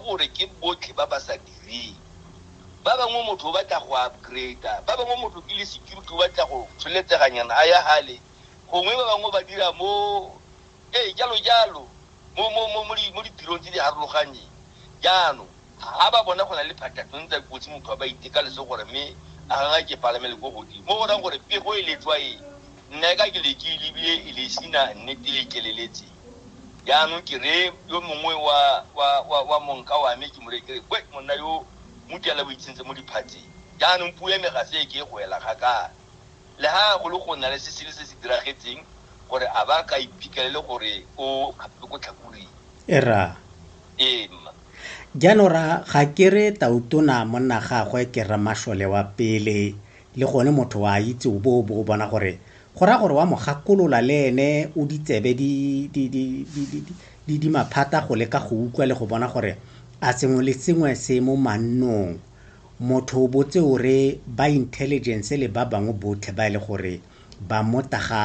gore ke botlhe ba ba sa direng, ba bangwe motho o batla go upgrade-a, ba bangwe motho ke le security o batla go tsholetseganyana a ya hale, gongwe ba bangwe ba dira mo ee jalo jalo mo mo mo mo di- mo ditirong tse di harologanyeng jaanong ga ba bona go na le phatatong tsa kotsi motho a ba iteka leso gore mme a ganga ke palame le ko godimo mo go rang gore pego e letswa e nna e ka ke leke e lebile e le sina nnete e keleletseng Jaanong ke reye yo mongwe wa, wa, wa, wa monka wa me, ke mo reye ke re, Kwe, monna yo mutiala o itshentse mo diphatseng. Jaanong puo ya me ga se e ke e go ela kgakala. Le ha go le go nna le se sele se se diragetseng, gore a ba ka iphitlhelele gore o kgapilwe ko tlhakuring. E ra. Ee, mma. Jaanong ra, ga ke re tautona monna gagwe ke rramašole wa pele, le gone motho wa a itse o bo o bo o bona gore go raya gore wa mo gakolola le ene o ditsebe di di di di di di di maphata go leka go utlwa le go bona gore a sengwe le sengwe se mo mannong motho o botse o re ba intelligence le ba bangwe botlhe ba e le gore ba mota ga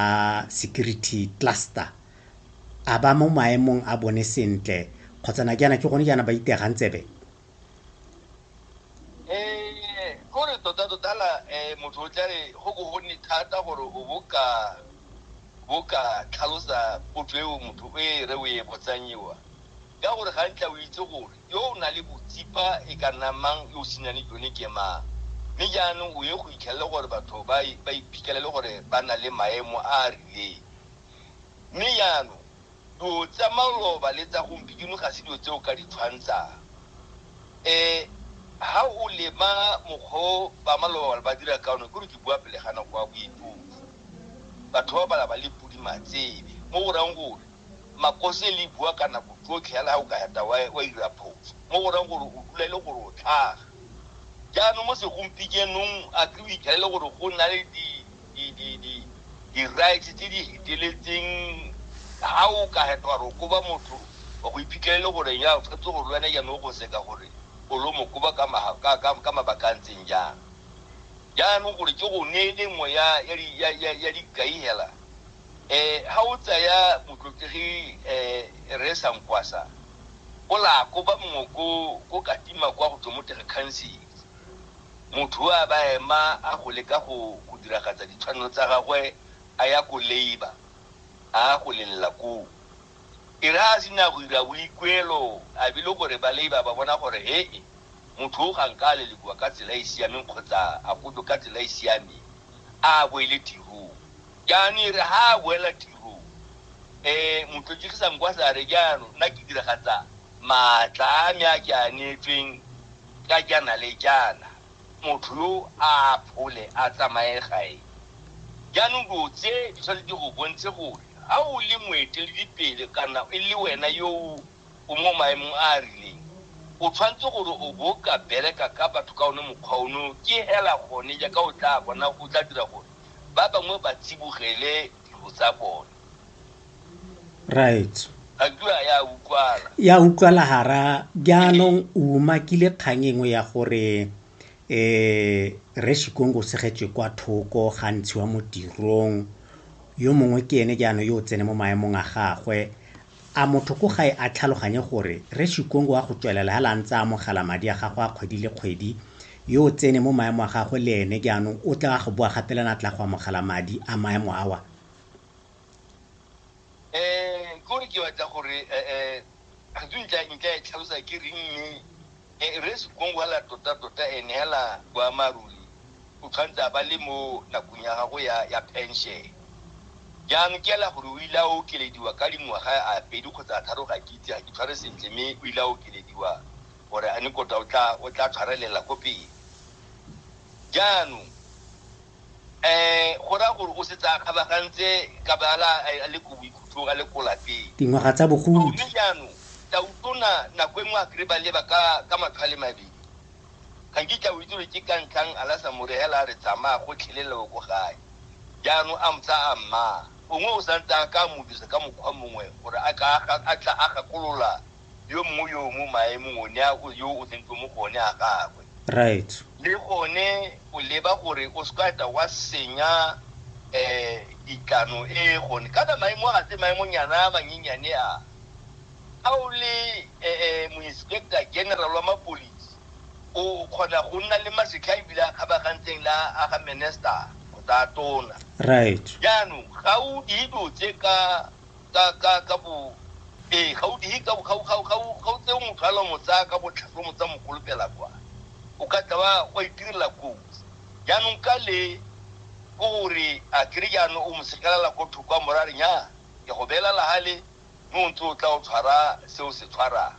security cluster a ba mo maemong a bone sentle kgotsa na ke yana ke gone jaana ba itegang tsebe um ko re tota-tota la um motho o tla re go bo go nne thata gore o bo ka bo ka tlhalosa potso eo motho o e re o e botsang ewa ka gore ga ntla o itse gore yo o na le botsipa e ka nna mang yo o senang le jone ke mang mme jaanong o ye go itlhelele gore batho ba iphitlhelele gore ba na le maemo a a rileng mme jaanong Dilo tsa maloba le tsa gompieno ga se dilo tse o ka di tshwantshang. Ha o lema mokgwa o ba maloba ba dira ka one, ke gore ke bua pele ga nako ya boitofi. Batho ba bala ba le podi matsebe, mo go rayang gore makose le bua ka nako tsotlhe yala ha o ka heta wa ira phoso, mo go rayang gore o dula e le gore o tlhaga. Jaanong mo segompikenong a ke o ithalele gore go na le di di-rights tse di feteletseng ha o ka hetwa re koba motho wa go iphitlhelele gore ya o tshwanetse gore le wena jaanong o go seka gore o lo mo koba ka mabaka a ntseng jang jaanong gore ke go neele nngwe ya dikai hela um ha o tsaya motlotlegi um re sankwasa o la koba mongwe ko katima kwa go tswa mo tere council Motho o a ba ema a go leka go go diragatsa ditshwanelo tsa gagwe a ya ko labour a go lelela koo. E re a sena go ira boikuelo a be le gore ba labour ba bona gore he-e motho o ga nka a lelekiwa ka tsela e siameng kgotsa a kotwe ka tsela e siameng a boele tirong. Jaanong e re ha a boela tirong e motho Jigisankwasa a re jaanong nna ke diragatsa maatla a me a ke a neetsweng. ka jaana le jaana, motho yo a aphole a tsamaye gae. Jaanong dilo tse di tshwanetse di go bontshe gore ga o le moeteledipele kana e le wena yo o mo maemong a a rileng, o tshwanetse gore o bo ka bereka ka batho ka one mokgwa ono, ke hela gone jaaka o tla bona go tla dira gore ba bangwe ba tsibogele dilo tsa bone. right ya utlwala gara jaanong o umakile kgang engwe ya gore um re shikongo segetswe kwa thoko ga ntshiwa mo tirong yo mongwe ke ene jaanong yo o tsene mo maemong a gagwe a motho ko gae a tlhaloganye gore re shikongo wa go tswelela ga la ntse a amogela madi a gagwe a kgwedi le kgwedi yo o tsene mo maemo a gagwe le ene jaanong o tla go boa gapelana tla go amogela madi a maemo awa um kore ke batla gore um re ntla e tlhalosa ke reng mme um re sekong hela tota-tota and hela boammaaruri o tshwanetse a ba le mo nakong ya gago ya pension jaanong ke ela gore o ile a okelediwa ka dingwaga a pedi kgotsa a tharo ga ke itse ga ke tshware sentle mme o ile a okelediwa gore a ne kota o tla tshwarelela ko pele jaanong um go raya gore o setse a kgabagantse ka ba a le ko boikhutlong a le ko lapeng dingwaga tsa bogodi mme jaanong tautona nako e nngwe a kry ba leba ka matlhwale mabedi ga nkitla o itse gore ke ka ntlhang a la sa mo regela a re tsamaya go tlheleleo ko gae jaanong a motsa a mmaa gongwe o santse a ka mo dirisa ka mokgwa mongwe gore a tla a gakolola yo mongwe yo o mo maemong o ne a o- yo o tsentswe mo go one a gagwe right le gone o leba gore o se ka tla wa senya um ditlano e gone kana maemo a tse maemonyana a manyenyane a a o le um moinspector general wa mapolisi o kgona go nna le masetlha ebile a kgabagantseng la a ga minister kgotsa a tona right jaanong ga o dilo tse ka ka ka ka bo ee ga o dihe ka ga ga ga ga o tseo motho a lo mo tsaya ka botlhaswa mo tsa mokolopela kwa o ka tla wa wa itirela kotsi jaanong ka le ko gore a kere jaanong o mo sekelela ko thoko a morare nya ke go beela lahale mo o ntse o tla o tshwara se o se tshwarang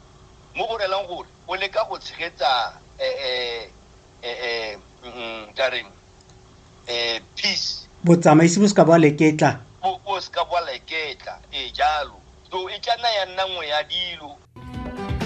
mo go relang gore o leka go tshegetsa um um um ka reng eh, peace botsamaisi bo se ka bwa leketla bo se ka bwa leketla e jalo so e tla nna ya nna nngwe ya dilo